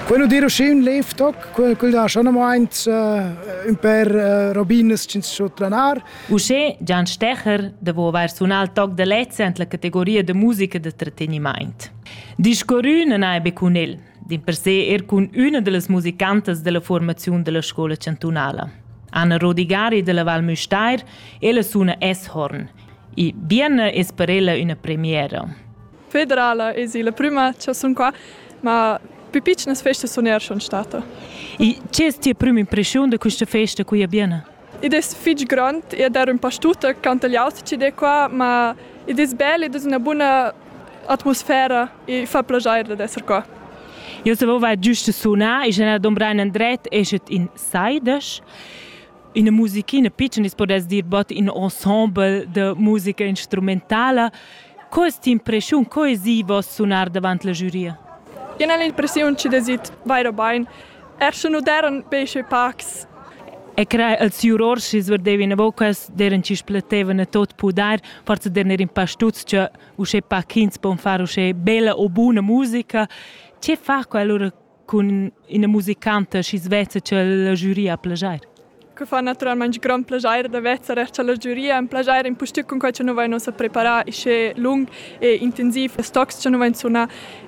Quello dir uscì un lev toc, quel da schon amaint un per robinas ch'ins so tranar. Uschè Gian Stecher devo avair sunà il toc da lezza ent la categoria da musica da tratteniment. Discorrün non hai be cun el, din per se er cun üna de las musicantas della formazione della scuola chantunala. Anna Rodigari della Val Müstair, ella suna S-Horn. E bien es per ella una premiera. federala es la prüma cha sun qua, ma pü pitschnas festas sun eir schon stada. E che es tia prüma impreschiun da quista festa qui a Biena? Id es fich grond ed er ün pa stuta cantagliaut chi'd è qua, ma id es bel, id es üna buna atmosfera e fa plaschair dad esser qua. Io savevo giusto sunar e general Dombrain Andret eschet in saidas. ina musichina pitschna, si podess dir bod in ensemble de musica instrumentala. Co est impression, co esi vos sunar davant la giuria? Jen el impressiun chi desit vaira bain, er sche nu deran besche pacs. E crea els jurors chi sverdevi na vocas, deran chi spletevana tot pudar, forza derner in pa stuts che usche pa chins pon far usche bella o buna musica. Ce fa quell'ora cun ina musicanta schi svezza ch'el la giuria a plagiar. Que fa naturalmente grand piacere da vezzer er cha la giuria un piacere in pustüt cun quai cha nu vain ussa preparà ischè lung e intensiv las tocs cha nu vain sunà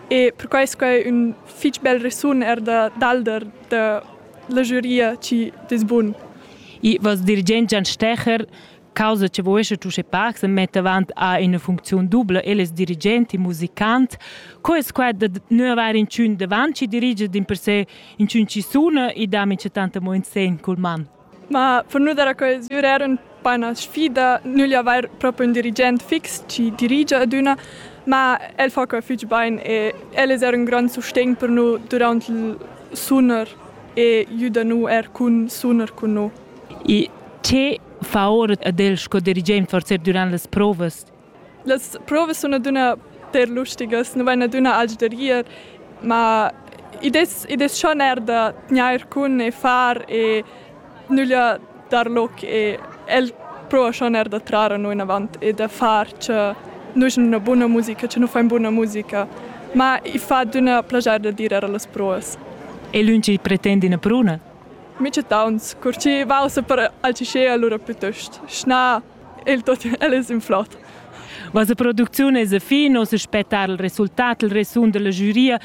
e per quai es quai ün fich bel resun er da dalder da la giuria chi dess bun. I voss dirigent Gian Stecher causa che vuescha Tusche Parks e metta avant a ina funcziun dubla eles dirigent e musicant. Co es quai da nu avair inchün davant chi dirigia din per se inchün chi suna e da mincha tanta mo in sen cul man? Ma per nu dare coesiur era un po una sfida, nugli avair proprio un dirigent fix chi dirigia ad üna, ma el fa quai fich bain e el es er un grand sustegn per nu durant il sunar e jüda nu er cun sunar cun nu. Il T fa ora ad el sco dirigent forsa durant las provas. Las provas sun adüna per lustigas, nu vain adüna alch da rir, ma id es id es schon eir da tgnair cun e far e nüglia dar loc e el prouva schon eir da trar a no inavant e da far cha nus ün üna buna musica, cha nu fain buna musica. Ma i fa adüna plaschair da dir eir a las provas. E lönch il pretend üna pruna? Michettauns, cur chi vausa per alchescher alura plütost schnà il tot, el es in flot. Vossa producziun es a fin, oz aspettar il resultat, il resun della giuria.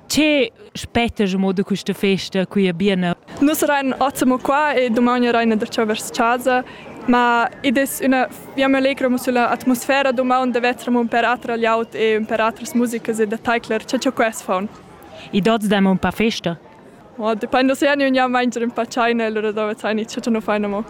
Che spettas mo da questa festa qui a Biena? Nus rein ozzamo qua e domani reina da ciò vers casa, ma id es üna via allegramo sulla atmosfera domani da vetramo un per atra laut e un per atras musicas e da taicler, cha ciò quest faun. I dots dam un pa festa? Dependa se gnü gnamaint ün pa tschaina e lura dovre tschaini, cha nu faina amo.